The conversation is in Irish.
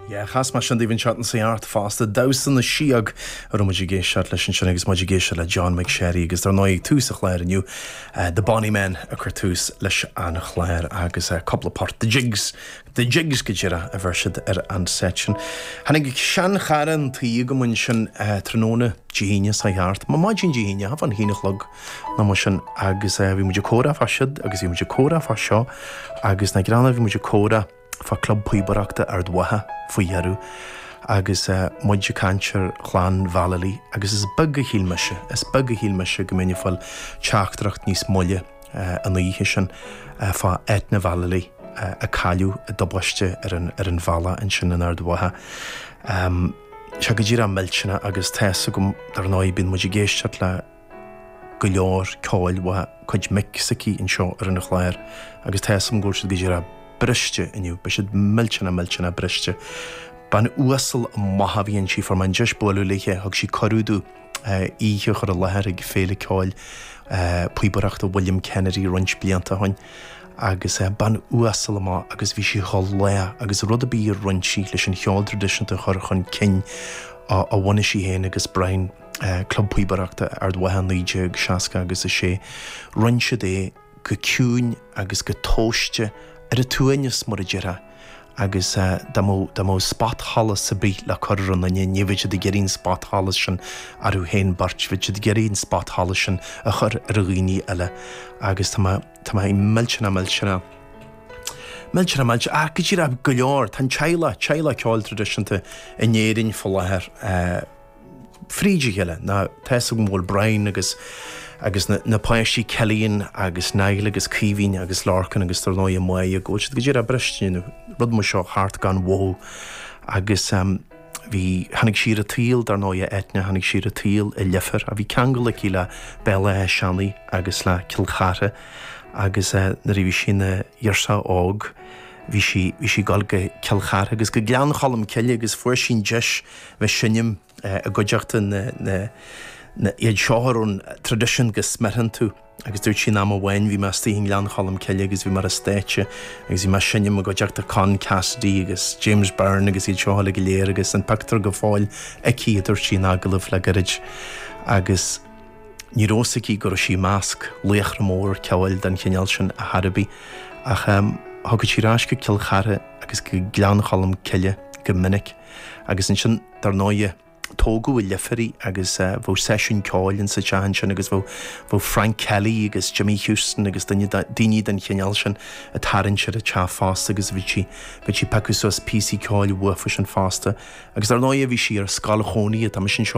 Yeah, chas mé sin daoibh an tseachtain seo thart fosta, damhsa na síog a raibh muid ag éisteacht leis ansin agus muid ag éisteacht le John McSherry agus dar ndóigh ag tús an chláir inniu eh, The Bonny Men a chuir tús leis an chlár agus eh, cúpla port The Jigs, The Jigs go díreach a bheir siad ar an set sin. Tháinig seanchara chun tí chugam ansin eh, tráthnóna, Dia hAoine, seo thart, ná maidin Dia hAoine, thart fán haon a chlog, ná mar sin agus eh bhí muid ag comhrá fá siud agus bhí muid ag comhrá fá seo agus nach greannmhar bhí muid ag comhrá fá club píobaireachta Ard Mhacha faoi dheireadh agus eh muid ag caint ar Chlann Vallely agus is beag a shíl mise is beag a shíl mise go mbeinn ag fáil teachtaireacht níos moille eh an oíche sin eh fá Eithne Vallely eh a cailleadh i dtubaiste ar an ar an bhealach ansin in Ard Mhacha eh. Tá sé go díreach millteanach agus tá 'fhios agam dar ndóigh bíonn muid ag éisteacht le go leor ceoil mhaith, cuid mic s'aici anseo ar an chlár agus tá 'fhios a'm go bhfuil siad go díreah briste inniu, beidh siad millteanach millteanach briste. Bean uasal mhaith a bhí inti, fuair mé an deis bualadh léithe, thug sí cuireadh domh oíche a chur i láthair ag Féile Ceoil Píobaireachta William Kennedy roinnt blianta ó shin agus bean uasal mhaith agus bhí sí chomh lách agus rud ar bith a rinne sí leis an cheol tradisiúnta a chur chun cinn a bhunaigh sí féin agus Brian Club Píobaireachta Ard Mhacha 1960 agus a sé rinne siad é go ciúin agus go tomhaiste ar a suaimhneas mar a déarfá agus dá mbeadh spotsholas ar bith le cur ar aon nduine ní bheadh siad ag iarraidh an spotsholas sin orthu féin beirt, bheadh siad ag iarraidh an spotsholas sin a chur ar dhaoine eile agus tá mé, tá mé millteanach millteanach millteanach ach go díreach go leor, tá an teaghlach, teaghlach ceoil traidisiúnta in Éirinn faoi láthair. fríd a chéile ná tá 'fhios agam go bhfuil Brian agus agus na na páistí Cillian agus Niall agus Caoimhín agus Lorcan agus dar ndóigh Máire go bhfuil siad go díreach briste nó rud mar seo theacht gan mhothú agus bhí tháinig sí ar an tsaol dar ndóigh a Eithne tháinig sí ar an tsaol i Leifear a bhí ceangal aici le Béal Átha Seanaidh agus le Cill Chartha agus nuair a bhí sí ina girseach óg bhí sí bhí sí ag dul go Cill Chartha agus go Gleann Cholm Cille agus fuair sí an deis bheith seinm i gcuideachta na iad shaothar ón traidisiún go smearthann tú agus dúirt sí aon am amháin bhí mé istigh i nGleann Cholm Cille agus bhí mé ar an stáitse agus bhí mé seinm i gcuideachta Con Cassidy agus James Byrne agus iad seo uilig go léir agus an pictiúr go fóill aici a dúirt sí in agallamh le gairid agus ní raibh 'fhios aici go raibh sí measc laochra móra ceoil den chineál sin ar chor ar bith ach um, thugadh sí rás go Cill Chartha agus go Gleann Cholm Cille go minic. Agus ansin, dar ndóighe, tógadh i Leifear í agus bheadh seisiún ceoil in sa teach ansin agus bheadh Frank Kelly agus Jimmy Houston agus daoine den chineál sin a' tarraingt ar a' teach fosta agus bhí sí, bhí sí ag piocadh suas píosaí ceoil uathusan fosta. Agus dar ndóighe bhí sí ar scoil chónaithe, tá mise anseo,